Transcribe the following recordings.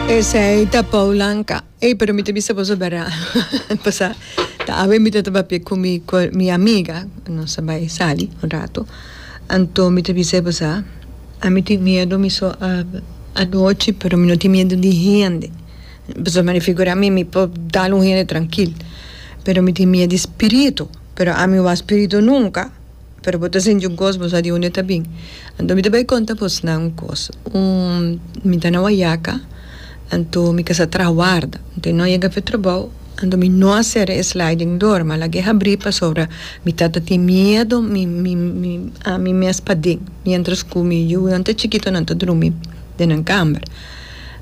Esei ta Paul Anka. Ey pero mi ta bisa boso bera pasá ta awe mi ta ta papia ku mi ku mi amiga nos a bai sali un rato anto mi ta bisa pasá a mi tin miedo mi so a anochi pero mi no tin miedo di hende pasobra mi a figurá mi mi por dal un hende trankil pero mi tin miedo di spiritu pero ami wou a spiritu nunka. Pero bo ta sinti un kos, bo sa di unda e ta bin. Anto mi ta bai konta bos nan un kos. Un, mi ta na Wayaka, anto mi kasa trahawarda. Anto e no a yega fe trabou, anto mi no a sera e sliding door, mi a laga e habri pasobra mi tata tin miedo mi mi mi ami mes paden, mientras cu mi yunan ta chikitonan ta drumi den nan kamer.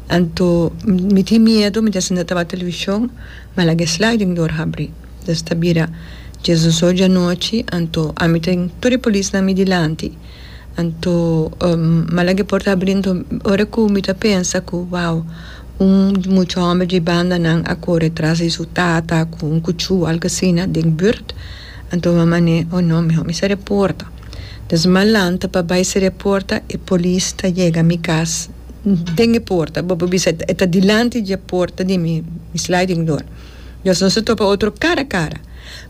Anto mi tin miedo, mi ta sinta tabata television, mi a laga e sliding door habri. Des ta bira, Jesus oja anochi, anto ami tin tur e polisnan mi dilanti. Anto, malanga e por ta abri, anto ora ku mi ta pensa ku, wow, un mucha hòmber di bandanan a kore tras di su tata ku un kuchú, algu asina, den bùrt, anto mi a man'é, oh no, mihó mi sera e porta. Des mi a lanta pa bai sera e porta, e polis ta yega mi kas den e porta, bo por bisa e ta dilanti dje porta di mi, mi sliding door. Dios nos a topa otro cara a cara.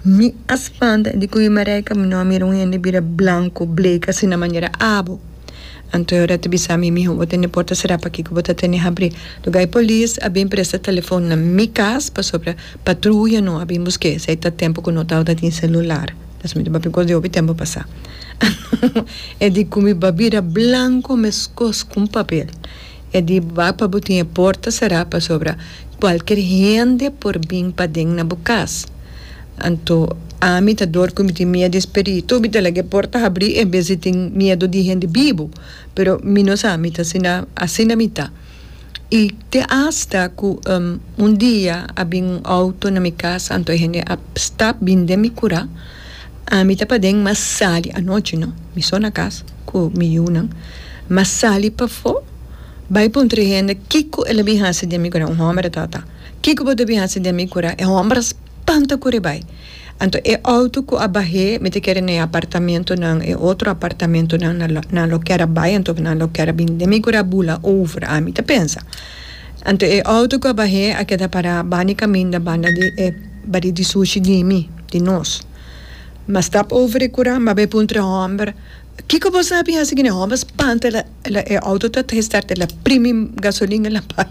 Mi a spanta di cu i Marijke mi no a mira un hende bira blanco, bleke asina manera abo. Anto e ora ta bisa mi, Miho, bo tene porta sera pakico bo ta tene habri? Loke ai polis a bin presta telefon na mi cas pasobra patruya no a bin busque esei ta tempo cu no tabata tin celular. Dios mio, ta papia cos di hopi tempo pasa. Anto e di cu mi ba bira blanco mescos cu un papel. E di bak pa bo tin e porta será pasobra kualker hende por bin paden na bo kas. Anto ami ta dor ku mi tin miedu di e spiritu, mi ta laga e porta habrí en bes di tin miedu di hende bibu. Pero mi no sa mi ta asina, asina mi ta. I te asta ku un dia a bin un outo na mi kas, anto e hende a stap bin den mi kura. Ami ta paden mas sali anochi no, mi so na cas cu mi yunan, mas sali pafo bay puntra e hende kico el a bin haci den mi cura, un homber a ta ta, kico bo ta bin haci den mi cura, e homber a spanta cura e bay, anto e auto cu a bahe mi ta kere na e apartamentonan, e otro apartamentonan nan nan lo kier a bay anto nan lo kier a bini den mi cura a bula over, ami ta pensa, anto e auto cu a bahe a keda para bani caminda banda di e bari di sushi di mi. di nos. Mas tap over e cura mabé puntra e homber, Kico bo sa bin hasi kina? Homber spanta el a el a e auto ta ta gestart el a primi gasolina el a bai.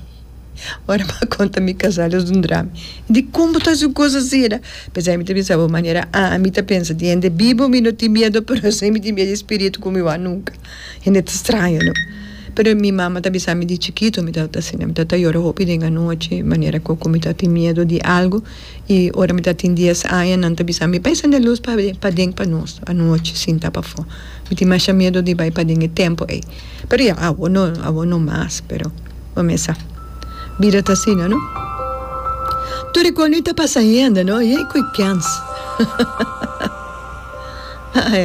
Ora bo a conta mi casal es un drama. Dicon bo ta hasi un cos asina? P'esei mi ta bisa bo manera ami ta pensa di hende bibo mi no tin miedo pero esei mi tin miedo di spiritu cu mi wou a nunca. Hende ta straña no. Pero mi mama ta bisami di chikito mi tabata asina mi tabata yora hopi den anochi manera cu cu mi ta tin miedo di algo. I ora mi ta tin dies aña nan ta bisa mi, Bai sende lus paden pa nos anochi sin ta pafó. Mi tin masha miedu di bai paden e tempu ei. Pero ya awo no, awo no mas, pero bo mesa. Bida ta asina no. Tur e kos ta pasa hende no, yey ku e kens. Ai.